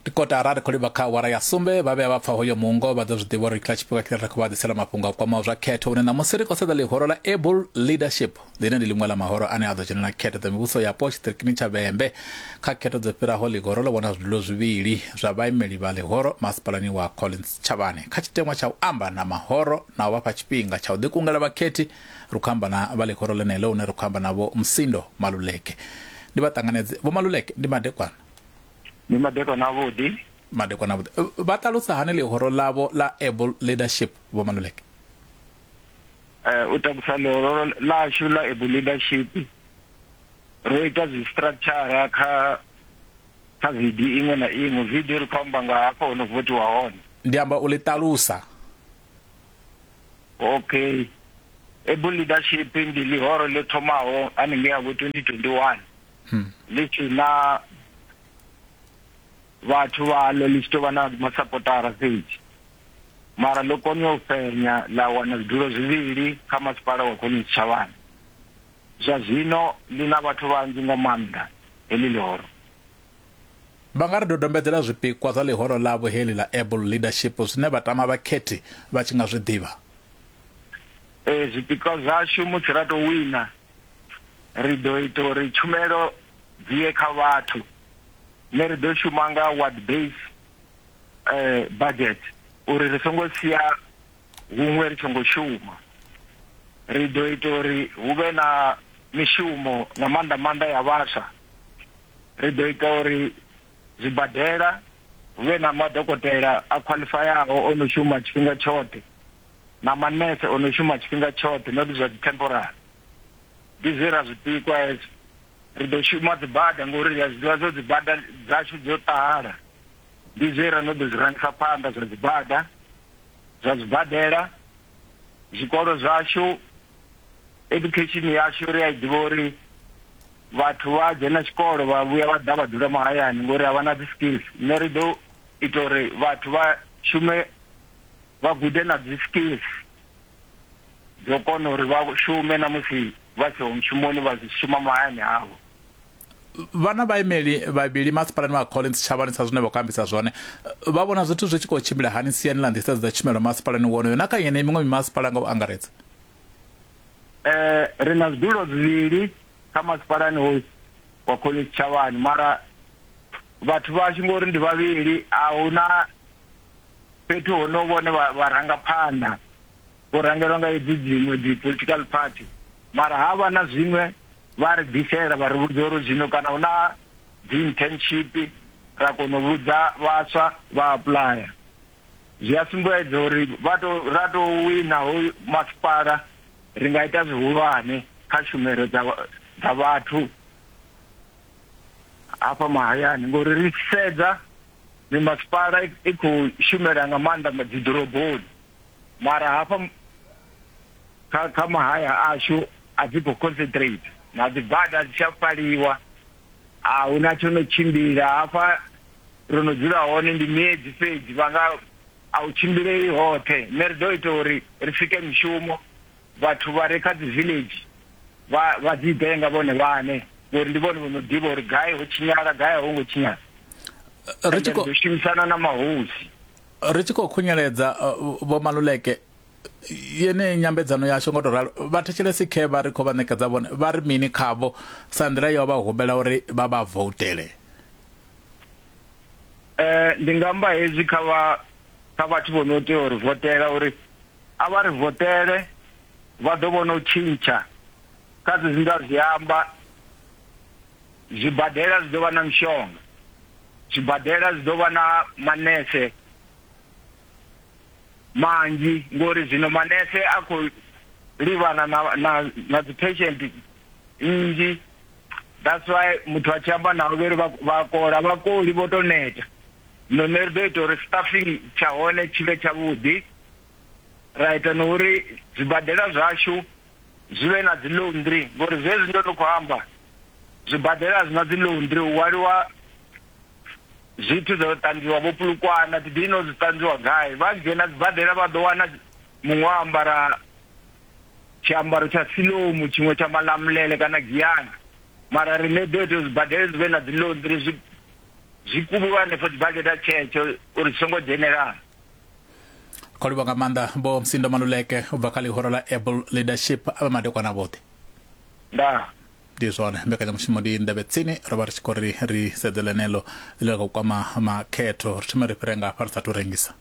ndi kotara ri khou livha kha awara ya sumbe vha vhea vha pfa hoyo mungo vha ḓo zwi ḓivha uri kha tshifhinga tshine ra khou vha ḓisela mafhungo a kwamaho zwa khetho hune ṋamusi ri khou sedza ḽihoro ḽa able leadership ḽine ndi ḽiṅwe ḽa mahoro ane a ḓo dzhenela khetho dza mivhuso yapo tshiṱirikini tsha vhembe kha khetho dzo fhiraho ḽihoro ḽo vhona zwidulo zwivhili zwa vhaimeli vha ḽihoro masipalani wa collins tshavhane kha tshiteṅwa tsha u amba na mahoro na u vha fha tshifhinga tsha u ḓikungela vhakhethi Ri khou amba na vha ḽihoro ḽeneḽo hune ra khou amba navho Msindo Maluleke. Ndi vha ṱanganedze. Vho Maluleke, ndi madekwana? Ndi madekwana avhuḓi. Madekwana avhuḓi. Vha ṱalusa hani ḽihoro ḽavho ḽa Able Leadership, Vho Maluleke? Eh, u takusa ḽihoro ḽashu ḽa Able Leadership, ro ita zwi structure kha kha video iṅwe na iṅwe. Video ri khou amba nga hafho ho no votiwa hone. Ndi amba u ḽi ṱalusa. okay able leadership ndi ḽihoro ḽi thomaho haningei ya vho 2021 hmm. ḽi tshi na vhathu vhaḽo ḽi tshi tou vha na masapotara fhedzi mara ḽo kona u fhenya ḽa wana zwidulo zwivhili kha masipala wa khoni tshitshavhani zwa zwino ḽi na vhathu vhanzhi nga maanḓa heḽi ḽihoro Vha nga ri dodombedzela zwipikwa zwa ḽihoro ḽavho heḽi ḽa Able Leadership zwine vha tama vhakhethi vha tshi nga zwi ḓivha? Ee, zwipikwa zwashu musi ra tou wina, ri ḓo ita uri tshumelo dzi ye kha vhathu. Ne ri ḓo shuma nga ward base budget uri ri songo sia huṅwe ri songo shuma. Ri ḓo ita uri hu vhe na mishumo nga maanḓa maanḓa ya vhaswa. ri ḓo ita uri zwibadela hu vhe na madokotela a khwaḽifayaho o no shuma tshifhinga tshoṱhe na manese o no shuma tshifhinga tshoṱhe not zwa dzi temporary ndi zwe ra zwi pikwa hezwo ri ḓo shuma dzibada ngori ri a zwi ḓivha zwo dzibada dzashu dzo ṱahala ndi zwe ra no ḓo zwi rangisa phanḓa zwa dzibada zwa zwibadela zwikolo zwashu Education yashu ri a i ḓivha uri vhathu vha dzhena tshikolo vha vhuya vha ḓa vha dzula mahayani ngori a vha na dzi skills nṋe ri ḓo ita uri vhathu vha shume vha gude na dzi skills dzo kona uri vha shume na musi vha siho mushumoni vha shuma mahayani avho vha na vhaimeli vhavhili masipalani wa collins tshavhani sa zwine vha khou ambisa zwone vha vhona zwithu zwi tshi khou tshimbila hani siani ḽa nḓisedzo dza tshumelo masipalani wonoyo na kha yeneyi miṅwe mimasipala nga u angaredza eh ri na zwidulo zwivhili kha masipalani hoyu wa collins tshavhani mara vhathu vhashu ngori ndi vhavhili a huna fhethu ho no vhone vha ranga phanḓa vho rangelwa nga hedzi dziṅwe dzi political party mara ha vha na zwiṅwe vha ri ḓisela vha ri vhudza uri zwino kana hu na dzi internship ra kona u vhudza vhaswa vha apuḽaya zwi a sumbedza uri vha to ra to wina ho masipala ri nga ita zwihulwane kha tshumelo dza dza vhathu hafha mahayani ngori ri sedza mimasipala i khou shumela nga maanḓa dzi ḓoroboni mara hafha kha kha mahaya ashu a dzi khou concentrate na dzi bada dzi tsha faliwa a hu na tsho no tshimbila hafha ro no dzula hone ndi miedzi fhedzi vha nga a u tshimbilei hoṱhe nṋe ri ḓo ita uri ri sike mishumo vhathu vha re kha dzi village vha vha dzi ḓe nga vhone vhane ngori ndi vhone vho no ḓivha uri gai ho tshinyala gai a ho ngo tshinyala ri tshi khou shumisana na mahosi ri tshi khou khunyeledza uh, vho maluleke yeneyi nyambedzano yashu ngo to ralo vha thetshelesi khe vha ri khou vha ṋekedza vhone vha ri mini khavho sa nḓila yo vha humbela uri vha vha voutele eh ndi nga amba hezwi kha vha kha vhathu vho no tea uri votela uri a vha ri votele vha ḓo vhona u tshintsha kha zwi nda zwi amba Zwibadela zwi ḓo vha na mishonga. Zwibadela zwi ḓo vha na manese manzhi ngori zwino manese a khou livhana na na na dzi patient nnzhi that's why muthu a tshi amba navho vha ri vha kola vhakoli vho to neta zwino nṋe ri ḓo ita uri staffing tsha hone tshi vhe tshavhuḓi ra ita na uri zwibadela zwashu zwi vhe na dzi laundry ngori zwezwi ndo no khou amba zwibadela zwi na dzi laundry u waliwa zwithu zwo ṱanzwiwa vho pulukwana did you know zwi ṱanzwiwa gai vha dzhena sibadela vha ḓo wana muṅwe a ambara tshiambaro tsha silomu tshiṅwe tsha malamulele kana giyana mara ri ne ḓo ita zwibadela zwi vhe na dzi laundry zwi zwi kuvhiwa hanefho sibadela tshetsho uri zwi songo dzhenelana kho livha nga maanḓa vho msindo maluleke u bva kha ḽihoro ḽa apple leadership a vha madekwana vhoṱhe nda ndi zwone mbekanyamushumo ndi ndavhe tsini ro vha ri tshi khou ri ri sedze ḽeneḽo ḽi la khou kwama makhetho ri thome ri fhire nga hafha ri sa tou rengisa